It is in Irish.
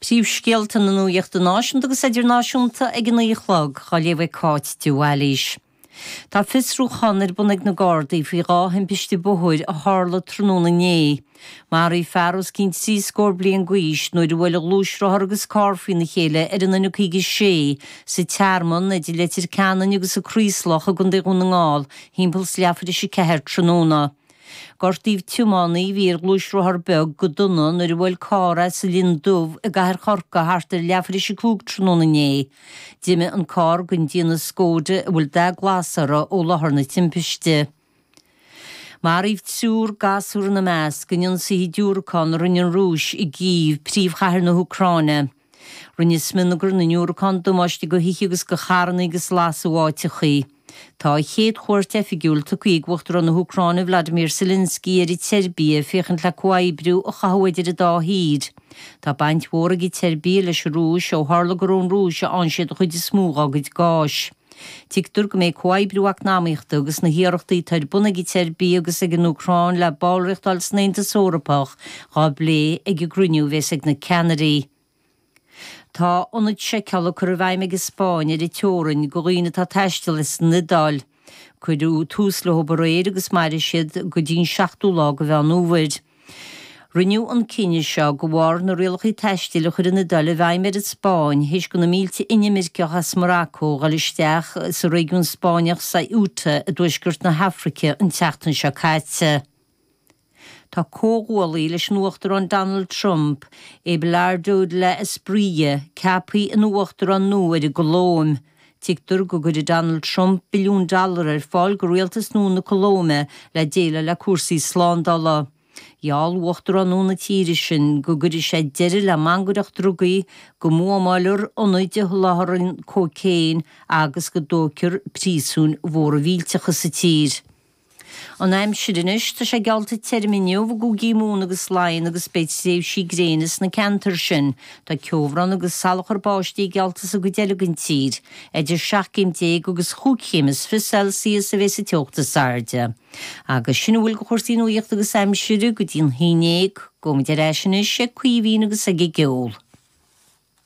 Príomhscéalta na nuachta náisiúnta agus idirnáisiúnta ag a naoi a chlog, á léamh ag Cáit de Bhailís. Tá fiosrúchán ar bun ag na Gardaí faoi dhá thimpiste bhóthair a tharla tráthnóna inné. Maraíodh fear os cionn trí scór bliain d'aois nuair a bhuail gluaisrothar agus carr faoina chéile ar an N56 sa Tearmann idir Leitir Ceanainn agus an Craoslach i gContae Dhún na nGall, timpeall is leathuair th'éis a 4 tráthnóna. Gortaíodh tiománaí a bhí ar ghluaisrothar beag go dona nuair a bhuail carr é sa Linn Dubh i gcathair Chorcaí thart ar leathuair th'éis a cúig tráthnóna inné. D'imigh an carr den déanamh Skoda a bhfuil dath glas air ó láthair na timpiste. Maraíodh triúr, gasúr ina measc in ionsaithe diúracán a rinne an Rúis i gCív, príomhchathair na hÚcráine. Rinne smionagar na ndiúracán damáiste go thithe agus go charranna agus lasadh áiteachaí. Tá a chéad chuairt oifigiúil tugtha ag Uachtarán na hÚcráine Vladimir Zelensky ar an tSeirbia féachaint le comhoibriú a chothú idir an dá thír. Tá baint mhór ag an tSeirbia leis an Rúis ó tharla gur ón Rúis a fhaigheann siad an chuid is mó dá gcuid gáis. Tuigtear go mbeidh comhoibriú eacnamaíochta agus na hiarrachtaí atá ar bun ag an tSeirbia agus ag an Úcráin le ballraíocht a fháil san Aontas Eorpach dhá bplé ag an gcruinniú a bhéas ag na ceannairí. Tá ionaid seiceála curtha i bhfeidhm ag an Spáinn ar an teorainn do dhaoine atá ag taisteal as an Iodáil. Cuireadh tús leo aréir agus mairfidh siad go dtí'n seachtú lá de Mheán Fhómhair. Rinneadh an cinneadh seo de bharr na rialacha taistil a chuir an Iodáil i bhfeidhm ar an Spáinn th'éis go na mílte inimirceach as Morocco dhul isteach sa réigiún Spáinneach Ceuta i dtuaisceart na hAfraice an tseachtain seo caite. Tá comhghuaillí leis an Uachtarán Donald Trump, Abelardo de la Espriella, ceaptha ina Uachtarán nua ar an gColóim, Tuigtear go gcuirfidh Donald Trump billiún dollar ar fáil go rialtas nua na Colóime le déileáil le cúrsaí slándála. Gheall Uachtarán nua na tíre sin go gcuirfidh sé deireadh le mangaireacht drugaí, go mbuamálfar ionaid a sholáthraíonn cóicéin agus go dtógfar príosúin mhóra mhillteacha sa tír. An aimsir anois, tá sé geallta tirim inniu i gCúigí Mumhan agus Laighean agus beidh tréimhsí gréine sna ceantair sin. Tá ceobhrán agus salachar báistí geallta sa gcuid eile den tír. Idir seacht gcéim déag agus chúig chéim is fiche Celsius a bheidheas an teocht is airde. Agus sin a bhfuil de chúrsaí nuachta agus aimsire go dtí a haon déag. Gabhfaidh muid ar ais anois ag Caoimhín agus ag an gceol.